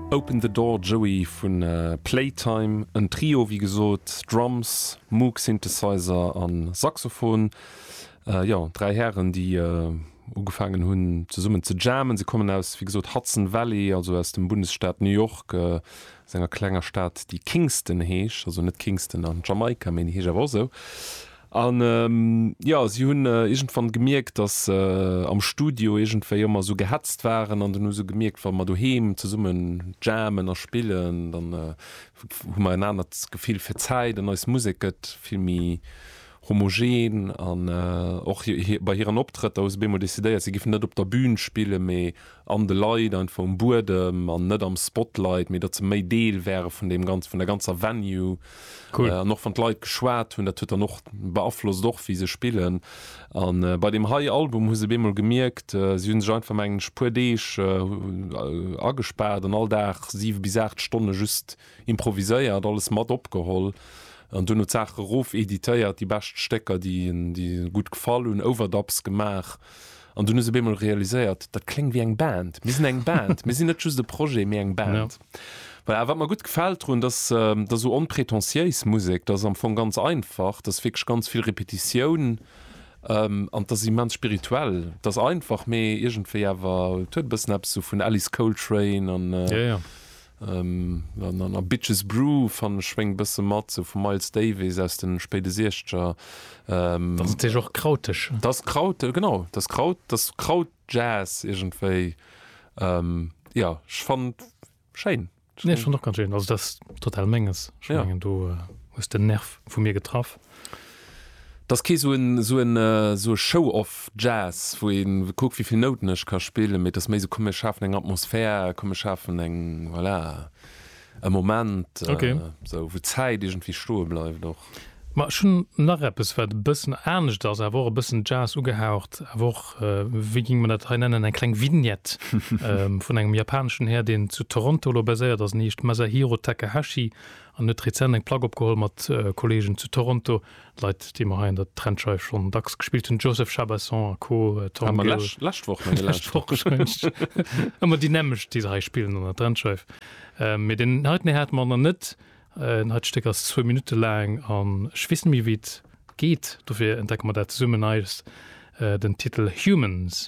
Open the Door Joey vu Playtime, en Trio wéi gesot, Drums, Moog Synthesizer a Saxophon. Jo, dräi Hären déi ugefaangen hunn zesummen ze jammen. Se kommen aus, wéi gesot, Hudson Valley, also aus dem Bundesstaat New York, aus enger klenger Stad déi Kingston heescht, also net Kingston an Jamaika, mee déi heescht awer och esou. An jo, si hunn iergendwann gemierkt, datt se am Studio iergendwéi ëmmer esou gehetzt waren an dunn hu se gemierkt, wa mer doheem zesummen jammen a spillen, dann hu mer en anert Gefill fir d'Zäit an eis Musek gëtt vill méi homogen. An och bei hiren Optrëtter hu se op eemol decidéiert, si géifen net op der Bün spillen, mee an de Leit einfach um Buedem an net am Spotlight, mee datt se méi Deel wäre vun deem Ganzen, vun der ganzer Venue. Cool. An och wann d'Leit geschwat hunn, dat huet dann och, beaflosst och wéi se spillen. A bei deem hei Album hu se op eemol gemierkt, si hu sech einfach mengen ech puer Deeg agespaart an all Dag siwe bis aacht Stonne just Improviséiert, alles mat opgeholl an duerno d'Saache erof editéiert, déi bescht Stécker, déi gutt gefall hunn, Overdubs gemaach. An dunn hu se op eemol realiséiert, dat kléngt wéi eng Band, mir sinn eng Band, mir sinn net just e Projet, mee eng Band. Voilà, a wat mer gutt gefält drun, dat ass esou onpretentiéis Musek, dat ass am Fong ganz einfach, dat ass wierklech ganz vill Repetitioun an dat ass immens spirituell. Dat ass einfach, mee iergendwéi awer, et huet e bëssen eppes esou vun Alice Coltrane an Na na na, Bitches Brew fannen ech schwéngt e bësse mat, sou vum Miles Davis aus den spéide Siechzeger. Dann ass et sécher och krauteg. Dat ass Kraut, genau, dat ass Kraut, dat ass Krautjazz iergendwéi. Jo, ech fannen et schéin. Nee, ech fannen et och ganz schéin. Also dat ass total menges. Ech mengen do hues de en Nerv vu mir getraff. D'ass kee sou en sou en sou e Showoff Jazz wou een kuckt wéivill Nouten ech ka spillen, mee et ass méi sou komm mir schafen eng Atmosphär, komm mir schafen eng voilà e Moment sou wou d'Zäit iergendwéi stoe bleift och. Ma ech hunn nach eppes wat e bëssen anescht ass, awer och e bëssen Jazz ugehaucht, awer och wéi géing mer dat hei nennen eng kleng Vignette vun engem japaneschen Här deen zu Toronto elo baséiert ass, en heescht Masahiro Takahashi An huet rezent eng Plack opgeholl mat Kolleegen zu Toronto, Leit déi mer hei an der Trendscheif schonn dacks gespillt hunn, Joseph Chabason a Co. Tom Gill. Hat mer lescht Woch menge lescht Woch gescht. Ëmmer déi nämmegt déi se hei spillen an der Trendscheif. Mee deen heiten hei hate mer nach net. Dat heite Stéck ass zwou Minutte laang an ech weess net méi wéi et geet, dofir entdecke mer dat zesummen. Hei ass den Titel Humans.